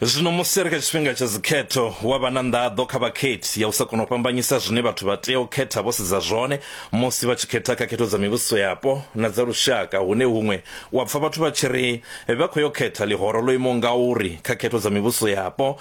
Zwino musi ri kha tshifhinga tsha dzikhetho, wa vha na nḓaḓo kha vhakhethi ya u sa kona u fhambanyisa zwine vhathu vha tea u khetha vho sedza zwone musi vha tshi khetha kha khetho dza mivhuso yapo na dza lushaka hune huṅwe wa pfa vhathu vha tshi ri vha khou yo khetha ḽihoro ḽo imaho ngauri kha khetho dza mivhuso yapo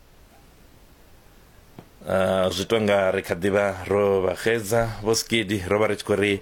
Uh, zwi to nga ri kha ḓivha ro vha xedza vho skidi ro vha ri tshi khou ri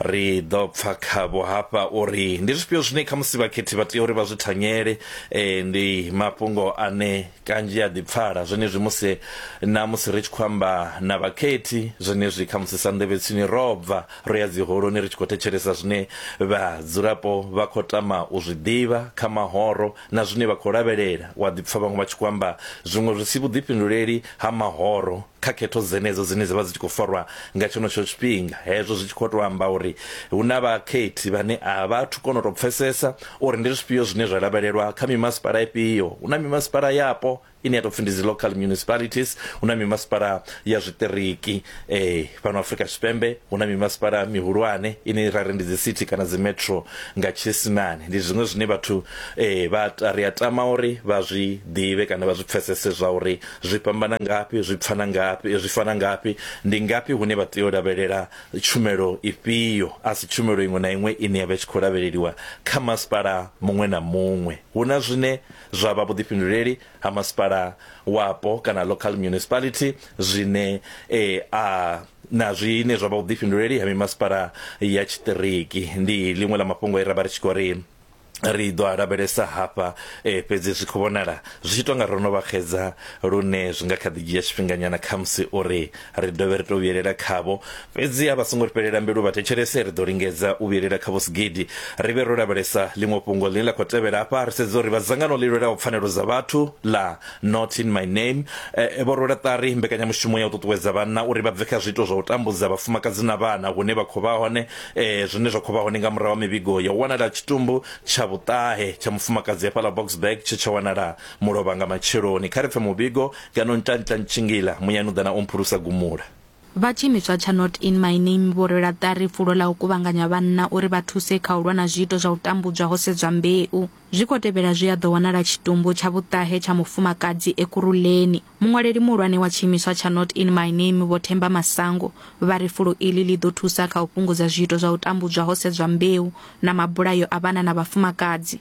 ri ḓo pfa khavho hafha uri ndi zwifhio zwine kha musi vhakhethi vha tea uri vha zwi thanyele eh, ndi mafhungo ane kanzhi a ḓi pfala zwenezwi musi na musi ri tshi khou amba na vhakhethi zwenezwi kha musi sa nḓevhetsini ro bva ro ya dziholoni ri tshi khou thetshelesa zwine vhadzulapo vha khou tama u zwi ḓivha kha mahoro na zwine vha khou lavhelela, u a ḓi pfa vhaṅwe vha tshi khou amba zwiṅwe zwi si vhuḓifhinduleli ha mahoro kha khetho dzenedzo dzine dza vha dzi tshi khou farwa nga tshenetsho tshifhinga, hezwo zwi tshi khou tou amba uri hu na vhakhethi vhane a vha athu kona u tou pfesesa uri ndi zwifhio zwine zwa lavhelelwa kha mimasipala ifhio. Hu na mimasipala yapo ine ya tou pfi ndi dzi local municipalities hu na mimasipala ya zwiṱiriki eh, fhano afrika tshipembe hu na mimasipala mihulwane ine ra ri ndi dzi city kana dzi metro nga tshiisimane ndi zwiṅwe zwine vhathu eh, vha ta- ri a tama uri vha zwi ḓivhe kana vha zwi pfesese zwa uri zwi fhambana ngafhi zwi pfana ngafhi eh, zwi fana ngafhi ndi ngafhi hune vha tea u lavhelela tshumelo ifhio a si tshumelo iṅwe na iṅwe ine ya vha i tshi khou lavheleliwa kha masipala muṅwe na muṅwe hu na zwine zwa vha vhuḓifhinduleli ha masipala wapo kana local municipality zwine e, a na zwine zwa vha vhuḓifhinduleli ha mimasipala ya tshiṱiriki ndi ḽiṅwe ḽa mafhungo e ra vha ri tshi khou ri ri ḓo a lavhelesa hafha e, fhedzi zwi khou vhonala zwi tshi tonga ro no vha xedza lune zwi nga kha ḓi dzhia tshifhinganyana khamusi uri Ri dovhe ri tou vhuyelela khavho. Fhedzi a vha songo ri fhelela mbilu vha thetshelese. Ri ḓo lingedza u vhuyelela khavho sigidi. Ri vhe ro lavhelesa ḽiṅwe fhungo ḽine ḽa khou tevhela afha. Ri sedze uri vha dzangano ḽi lwelaho pfanelo dza vhathu ḽa Not In My Name vho rwela ṱari mbekanyamushumo ya u ṱuṱuwedza vhanna uri vha bve kha zwiito zwa u tambudza vhafumakadzi na vhana hune vha khou vha hone, zwine zwa khou vha hone nga murahu ha mivhigo ya u wanala ha tshitumbu tsha vhuṱahe tsha mufumakadzi hafhaḽa Boksburg tshe tsha wanala Mulovha nga matsheloni, kha ri pfe muvhigo, ngeno ntantla ntshingila muyani u ḓa na u mphulusa gumula. Vha tshiimiswa tsha Not In My Name vho rwela ṱari fulo ḽa u kuvhanganya vhanna uri vha thuse kha u lwa na zwiito zwa u tambudzwa ho sedzwa mbeu. Zwi khou tevhela zwi a ḓo wanala tshitumbu tsha vhuṱahe tsha mufumakadzi Ekurhuleni. Muṅwaleli muhulwane wa tshiimiswa tsha Not In My Name Vho Themba Masango vha ri fulo iḽi ḽi ḓo thusa kha u fhungudza zwiito zwa u tambudzwa ho sedzwa mbeu na mabulayo a vhana na vhafumakadzi.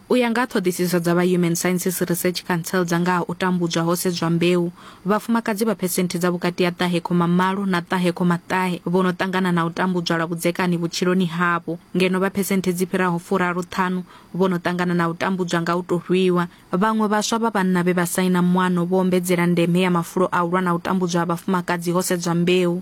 U ya nga ha ṱhoḓisiso dza vha Human Sciences Research Council dza nga ha u tambudzwa ho sedzwa mbeu, vhafumakadzi vha phesenthe dza vhukati ha ṱahe khoma malo na ṱahe khoma ṱahe vho no ṱangana na u tambudzwa lwa vhudzekani vhutshiloni havho, ngeno vha phesenthe dzi fhiraho furaru ṱhanu vho no ṱangana na u tambudzwa nga u tou rwiwa. Vhaṅwe vhaswa vha vhanna vhe vha saina muano vho ombedzela ndeme ya mafulo a u lwa na u tambudzwa ha vhafumakadzi ho sedzwa mbeu.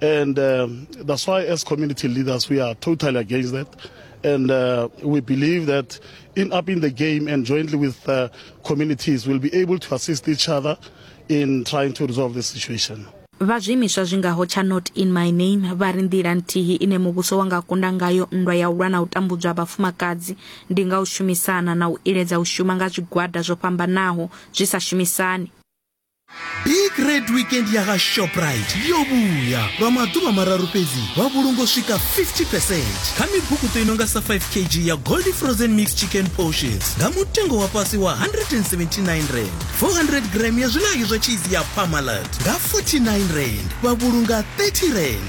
And um, that's why, as community leaders, we are totally against that. And uh, we believe that in upping the game and jointly with uh, communities, we'll be able to assist each other in trying to resolve the situation. vha zwiimiswa zwi ngaho tsha not in my name vha ri nḓila nthihi ine muvhuso wa nga kunda ngayo nndwa ya u lwa na u tambudzwa ha vhafumakadzi ndi nga u shumisana na u iledza u shuma nga zwigwada zwo fhambanaho zwi sa shumisani big red weekend ya ha shoprite yo vhuya lwa maḓuvha mararu fhedzi vha vhulungo swika 50 percent kha mibukuṱo i nonga sa 5 kg ya goldi frozen mix chicken portions nga mutengo wa fhasi wa 179 rand 400 gram ya zwilayo zwa cheese ya pamalat nga 49 rand vha vhulunga 30 rand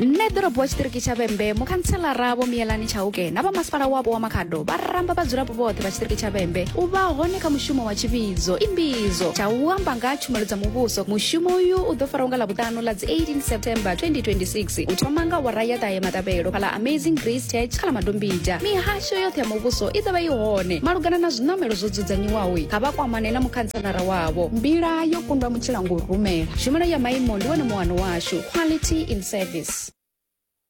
Nṋe ḓorobowa tshiṱiriki tsha Vhembe, mukhantselara Vho Miyelani Chauke na vha masipala wapo wa Makhado vha ramba vhadzulapo vhoṱhe vha tshiṱiriki tsha Vhembe u vha hone kha mushumo wa tshivhidzo imbidzo tsha u amba nga tshumelo dza muvhuso. Mushumo uyu u ḓo faraho nga Ḽavhuṱanu ḽa dzi 18 September 2026 u thoma nga awara ya ṱahe maṱavhelo kha ḽa Amazing Grace Church kha ḽa Madombija. Mihasho yoṱhe ya muvhuso i ḓo vha i hone. Malugana na zwiṋamelo zwo dzudzanyiwaho, kha vha kwamane na mukhantselara khomishinara wavho mbila yo kundwa mutshila ngo rumela tshumelo ya maimo ndi wone muwano washu quality in service